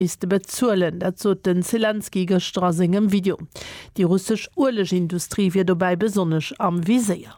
misste bezuelen. Dat sot den Selenskyj gëschter a sengem Video. Déi russesch Uelegindustrie wier dobäi besonnesch am Viséier.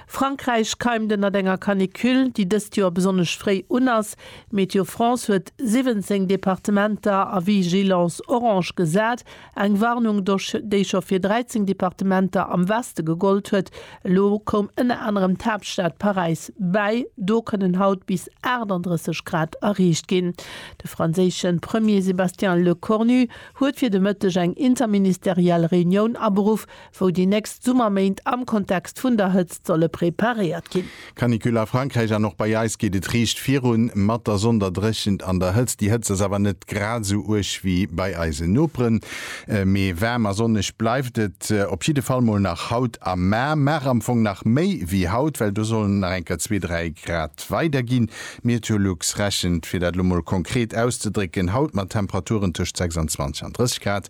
Frankräich keimt ënnert enger Canicule, déi dëst Joer besonnesch fréi un ass. Météo France huet 17 Departementer a Vigilance orange gesat. Eng Warnung dosch, déi scho fir 13 Departementer am Weste gegollt huet. Elo koum ënner anerem d'Haaptstad Paräis bäi. Do kënnen haut bis 38 Grad erreecht ginn. De franséische Premier Sébastien Lecornu huet fir de Mëtteg eng interministeriell Reunioun aberuff, wou déi nächst Summerméint am Kontext vun der Hëtzt solle preparéiert ginn. Canicule a Frankräich an och bei eis geet et riicht virun mat der Sonn, der Dréchent an der Hëtzt. Déi Hëtzt ass awer net grad esou uerg wéi bei eisen Noperen, mee waarm a sonneg bleift et op jidde Fall mol nach haut a mar. Mar am Fong nach méi wéi haut, well do sollen et nach eng Kéier zwee, dräi Grad weider ginn. Meteolux rechent, fir dat elo mol konkret auszedrécken, haut mat Temperaturen tëscht 26 an 30 Grad,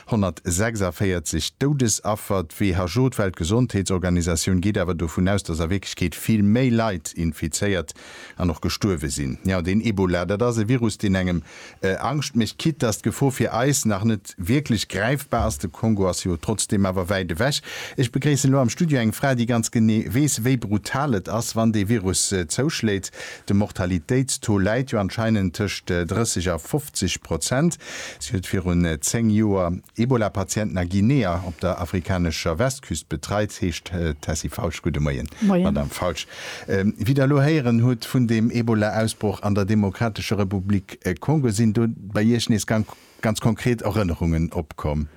146 Doudesaffer, d'WHO, d'Weltgesondheetsorganisatioun, geet awer dovun aus, datt a Wierklechkeet vill méi Leit infizéiert an och gestuerwe sinn. Jo, den Ebola, dat ass e Virus, deen engem Angscht mécht. Quitte datt d'Gefor fir eis nach net wierklech gräifbar ass, de Kongo ass jo trotzdeem awer wäit ewech. Ech begréissen elo am Studio eng Fra, déi ganz genee weess, wéi brutal et ass, wann dee Virus zouschléit. De Mortalitéitstaux läit jo anscheinend tëscht 30 a 50 Prozent. Si huet virun 10 Joer Ebola-Patienten a Guinea op der afrikanescher Westküst betreit, heescht d'Tessy Falsch. Gudde Moien, Madamm Falsch. Wéi Der elo héieren hutt vun deem Ebola-Ausbroch an der Demokratescher Republik Kongo, sinn do bei Iech nees ganz konkret Erënnerungen opkomm?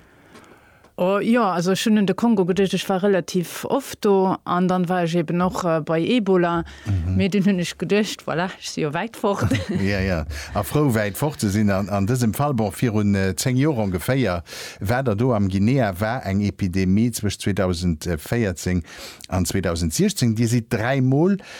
Jo, also ech hunn un de Kongo geduecht, ech war relativ oft do an dann war ech eben och bei Ebola, mee dunn hunn ech geduecht, voilà, ech si jo wäit fort. Jo, jo, a frou wäit fort ze sinn an dësem Fall. Bon, virun 10 Joer ongeféier war der do am Guinea, war eng Epidemie zwëscht 2014 an 2016. Dir sidd dräi Mol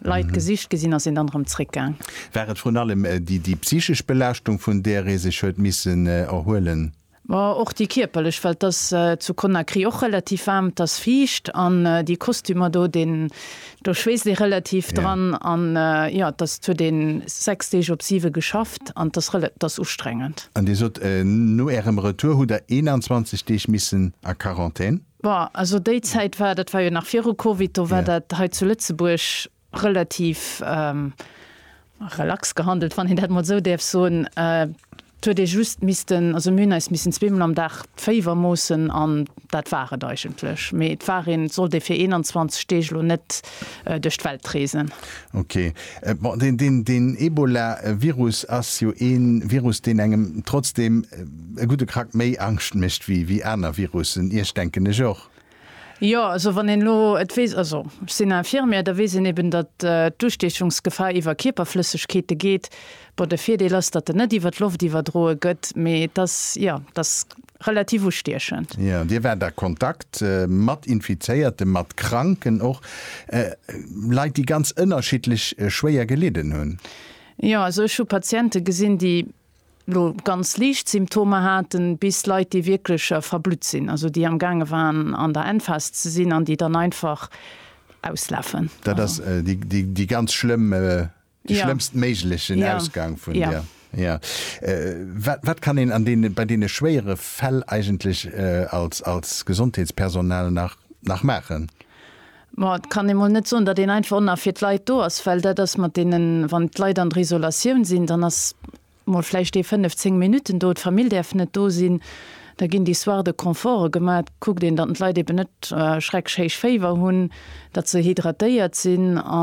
Leit gesicht ginn sinn, ass een dann erëm zréckgaang. War et vrun allem déi psychesch Belaaschtung, vun där ee sech huet missen erhuelen? Ma och déi kierperlech, well et ass zu Conakry och relativ waarm, et ass fiicht an déi Kostümer do, deen, do schweesst ee relativ dran. An jo, et ass, et huet een sechs Deeg op siwe geschafft an et ass rela, et ass ustrengend. An Dir sot, no Ärem Retour hutt Der 21 Deeg missen a Quarantän? Bon, also déi Zäit war, dat war jo nach viru Covid, do war dat hei zu Lëtzebuerg relativ relax gehandelt, wann een dat emol esou däerf soen. Et huet ee just missten, also mir hunn eis missen zweemol am Dag d'Féiwer moossen an dat war et eigentlech. Mee et war een, et sollt ee fir 21 Deeg elo net duerch d'Welt reesen. Ok. Bon, deen Ebola-Virus ass jo ee Virus, deen engem trotzdeem e gudde Krack méi Angscht mécht wéi wéi aner Virussen. Iech, denken ech och. Jo, also wann een elo et weess, also ech sinn Infirmière, da weess een eben, datt d'Ustiechungsgefahr iwwer Kierperflëssegkeete geet. Bon, de Virdeel ass, datt en net iwwer d'Loft iwwerdroe gëtt, mee et ass, jo, et ass relativ ustiechend. Jo, Dir waart a Kontakt mat Infizéierten, mat Kranken och, Leit, déi ganz ënnerschiddlech schwéier gelidden hunn. Jo, also ech hu Patiente gesinn, déi elo ganz liicht Symptomer haten, bis Leit, déi wierklech verblutt sinn, also déi am gaange waren an der Emphase ze sinn an déi dann einfach auslafen. Dat ass déi ganz schlëmm, dee schlëmmst méiglechen Ausgang vun där. Jo. Wat kann een an deene, bei deene schwéiere Fäll eigentlech als Gesondheetspersonal nach maachen? Ma et kann ee mol net soen, datt een einfach onna fir d'Leit do ass, well dat ass mat deenen, wann d'Leit an der Isolatioun sinn, dann ass mol vläicht ee fënnef, zéng Minutten do, d'Famill däerf net do sinn, da ginn déi Soire de Confort gemaach. Et kuckt een, datt d'Leit eben net schreckschhéich Féiwer hunn, datt se hydratéiert sinn.